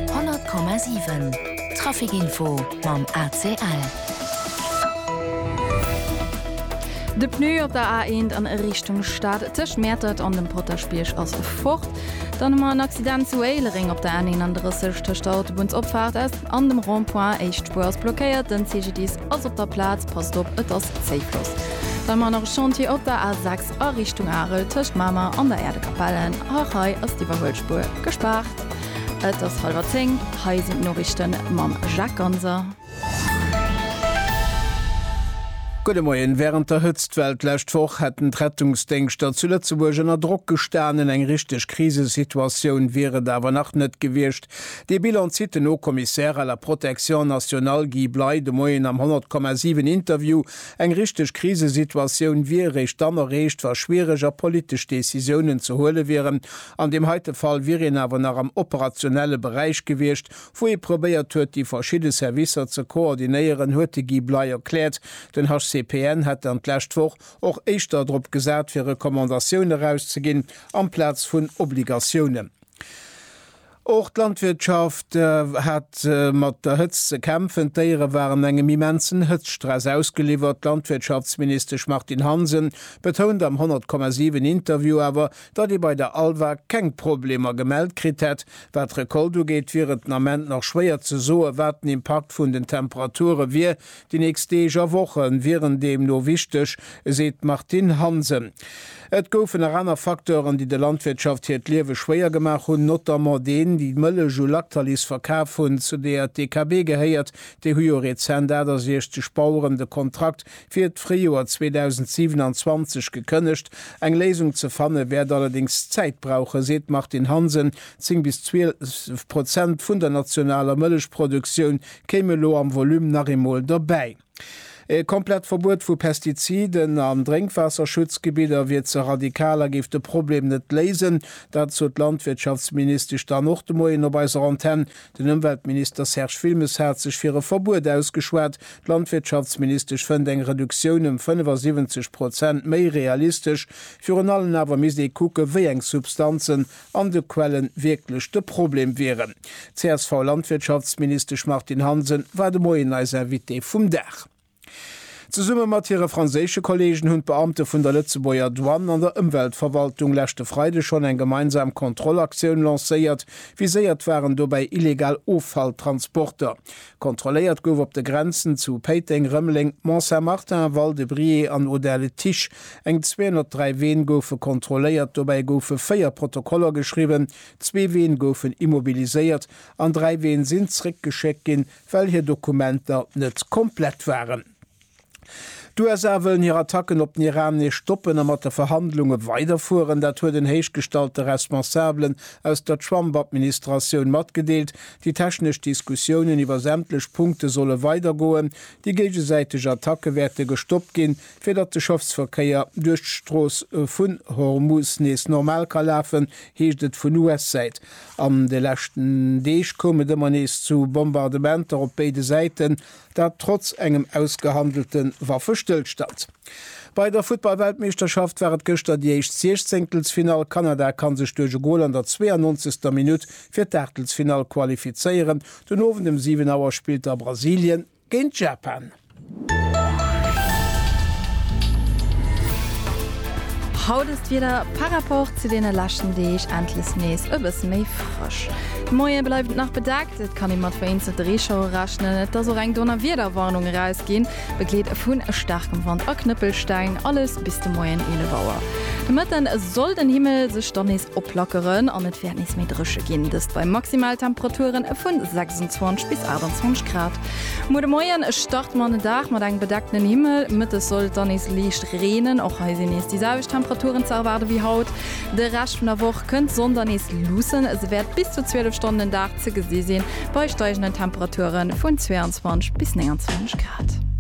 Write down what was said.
100,7 Trafic Info mam ACL. De Pneu op der A1 an Richtung Stad tëscht Mäertert an dem Potaschbierg ass fort. Dann hu mer en Accident zu Éilereng op der N31 tëscht der Autobunnsopfaart S an dem Rond-point. Éischt Spuer ass blockéiert, den CGDIS ass op der Plaz, passt op, et ass Zéifloss. Dann hu mer nach e Chantier op der A6. A Richtung Arel tëscht Mamer an der Äerdekapell, och hei ass d'Iwwerhuelspuer gespaart. Et ass hallwer zéng, hei sinn d'Noriichte mam Jacques Ganser. Gudde Moien. Wärend der Hëtztwell d'lescht Woch hätten d'Rettungsdéngschter zu Lëtzebuerg ënner Drock gestanen. Eng richteg Krisesituatioun wier et awer nach net gewiescht. Dee Bilan zitt den Haut-Commissaire à la Protection nationale Guy Bley de Moien am 100,7 Interview Eng richteg Krisesituatioun wier eréischt dann erreecht, wa schwiereg a politesch Decisiounen ze huele wieren. An deem heite Fall wier een awer nach am operationelle Beräich gewiescht, wou ee probéiert huet, déi verschidde Servicer ze koordinéieren, huet de Guy Bley erkläert. Den HCPN hätt dann d'lescht Woch och éischter drop gesat, fir Recommandatioune erauszeginn amplaz vun Obligatiounen. Och d'Landwirtschaft hat mat der Hëtzt ze kämpfen. D'Déiere waren engem immensen Hëtztstress ausgeliwwert. D'Landwirtschaftsministesch Martine Hansen betount am 100,7 Interview awer, datt ee bei der Alva keng Problemer gemellt kritt hätt. Wat d'Recolte ugeet, wier et den Ament nach schwéier ze soen, wat den Impakt vun den Temperature wier, Déi nächst Deeg a Woche wieren deemno wichteg, seet d'Martine Hansen. Et goufen nach aner Facteuren, déi der Landwirtschaft hiert Liewe schwéier gemaach hunn, notamment deen, déi d'Mëllech u Lactalis verkaf hunn, zu deeër d'DKB gehéiert. Déi hu jo rezent 68 Baueren de Kontrakt fir d'Fréijoer 2027 gekënnegt. Eng Léisung ze fanne wäert allerdéngs Zäit brauchen, seet d'Martine Hansen. Zéng bis zwielef Prozent vun der nationaler Mëllechproduktioun kéim elo am Volume nach eemol dobäi. E komplett Verbuet vu Pestiziden an Drénkwaasserschutzgebidder wier ze radikal a géif de Problem net léisen. Dat sot d'Landwirtschaftsministesch dann och de Moien op eiser Antenn. Den Ëmweltminister Serge Wilmes hat sech fir e Verbuet ausgeschwat. D'Landwirtschaftsministesch fënnt eng Reduktioun ëm 75 Prozent méi realistesch. Virun allen awer misst ee kucken, wéi eng Substanzen an de Quellen wierklech de Problem wieren. D'CSV-Landwirtschaftsministesch Martine Hansen war de Moien eis Invitée vum Dag. Zesumme mat hire franséische Kolleegen hunn d'Beamte vun der Lëtzebuerger Douane an der Ëmweltverwaltung leschte Freide schonn eng gemeinsam Kontrollaktioun lancéiert. Viséiert waren dobäi illegal Offalltransporter. Kontrolléiert gouf op de Grenzen zu Péiteng, Rëmeleng, Mont-Saint-Martin, Val-de-Briey an Audun-le-Tiche. Eng 203 Ween goufe kontrolléiert, dobäi goufe 4 Protokoller geschriwwen, zwee Ween goufen immobiliséiert an dräi Ween sinn zréckgeschéckt ginn, well hir Dokumenter net komplett waren. D'USA wëllen hir Attacken op den Iran nees stoppen a mat de Verhandlunge weiderfueren. Dat huet en héichgestallte Responsabelen aus der Trump-Administratioun matgedeelt. Déi technesch Diskussiounen iwwer sämtlech Punkte solle weidergoen. Déi géigesäiteg Attacke wäerte gestoppt ginn, fir datt de Schëffsverkéier duerch d'Strooss vu Hormuz nees normal ka lafen, heescht et vun US-Säit. An de leschten Deeg koum et ëmmer nees zu Bombardementer op béide Säiten. Dat trotz engem ausgehandelte Waffestëllstand. Bei der Futtball-Weltmeeschterschaft war et gëschter déi éischt Siechzéngtelsfinall. Kanada kann sech duerch e Gol an der 92. Minutt fir d'Aachtelsfinall qualifizéieren. Den Owend ëm 7 Auer spillt da Brasilien géint Japan. Haut ass d'Wieder par rapport zu deene leschten Deeg endlech nees e bësse méi. Dënschdeg. De Moie bleift nach bedaackt, et kann ee mat vereenzelte Reeschauere rechnen. Et ass och eng Donnerwiederwarnung erausginn, begleet vu staarkem Wand a Knëppelsteng. Alles bis de Moien 11 Auer. De Mëtten soll den Himmel sech dann nees oplackeren an et wäert nees méi dréche ginn, dëst bei Maximaltemperature vu 26 bis 28 Grad. Muer de Moien starte mer an den Dag mat engem bedeckten Himmel, mëttes soll et dann nees liicht reenen. Och hei sinn nees déi selwecht Temperaturen ze erwaarde wéi haut. De Rescht vun der Woch kënnt d'Sonn dann nees luussen, se wäert bis zu 12 Stonnen den Dag ze gesi sinn, bei steigenden Temperature vun 22 bis 29 Grad.